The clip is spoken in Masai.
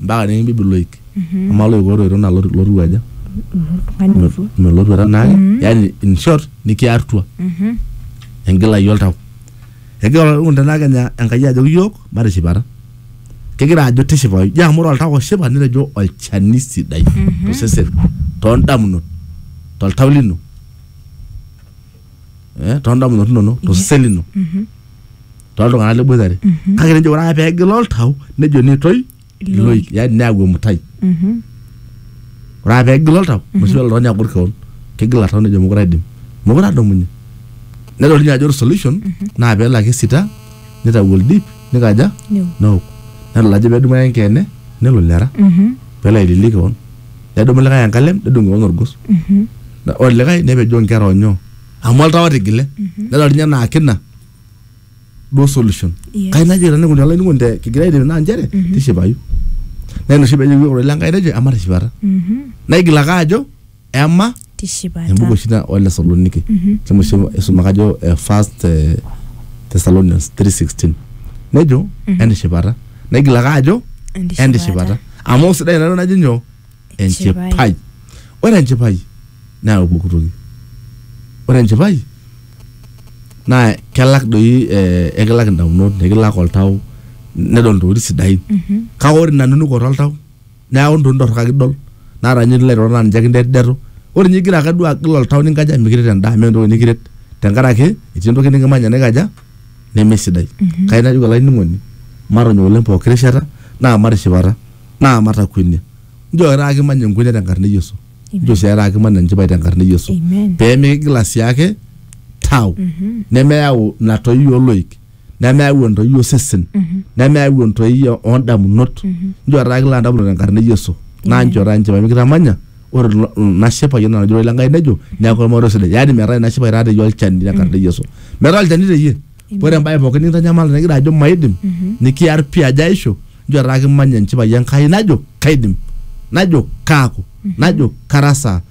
mpaka nikimbibi loik amaa loik otoito naa loti- lotiu aja Oltung'ani otua. melotuata naake yani in short nikiartua engilai oltau egira olainining'oni tenaa kenya enkai ajoki yiok matishipata kegira ajo tishipayu ijo amu ore oltau oshipa nitejo olchani sidai tosesen tondamunot toltau lino eh, toondamunot inonok tosesen lino toltung'anak liboitare kake nejo ore ake peegila oltau nejo netoi iloik yani neyau emutai Mhm. ore ake peegila oltau noshi kata oltung'ani agor keon kegila oltau nejo mokure aidim mokure adumunye nedol ninye ajo ore solution naa peelo ake sita nitau oldip nikaja Neo. neok nedol ajo pedumu ake enkeene nelo lera Mhm. peelo aililie keon nedumu likae enkalem nedung kewon orgos Na- ore likae nepejoo nkera onyoo amu oltau otigile nedol ninye naa kina duo solution Yes. kai najoki tenikuni olainining'oni te kigira aidip naa nchere tishipayu naa ina oshi peejoki iyiook ororei lenkai tejo ematishipata Mhm. naigil ake ajo ema tishipata. Embuku oshi ina Wathesaloniki. Mm -hmm. Shomo oshi isuma kajo uh, first uh, eh, Thessalonians 3:16. Nejo mm -hmm. entishipata. Negil ake ajo entishipata. Amu sidai ina najo nyoo? Enchipai. Ore enchipai naa pooki toki. Ore enchipai naa kelak doi eh, ekilak indamunot, nekilak oltau, nedol intokitin sidain. Mm -hmm. Kake ore ina nunukoto oltau neeku ntokitin torrok ake idol naata ninye lilo airorot naa ninche kindetudetu ore ninye igira ake duo agil oltau ninkaja mikiret endaa meeta entoki nikiret tenkaraki etii entoki nikimanya naikaja nemesidai kai najoki olainining'oni matonyok oleng pooki rishata naa matishipata naa matakuenia njoo taata kimany enkuenia tenkarna e Yesu njoo sii taata kimany enchipai tenkarna e Yesu Amen. pee mikigila sii ake tau nemeyau ina toiwuo oloik nemeyau entoi osesen nemeyau entoi o- oondamunot nchootaa kila endamunoto enkarna e yesu naa nchootaa nchipai mikitamanya ore ilo- ina shipai enaa enajo le nkai nejo neeku ormarei sidai yaani metaa ina shipai taa teyie olchani tenkarna e yesu metaa olchani teyie ore embae pookin nikintanyamal nikigira ajo maidim nikiar pii ajo aisho nchootaa kimanya enchipai enkai najo kaidim najo kaaku najo karasaa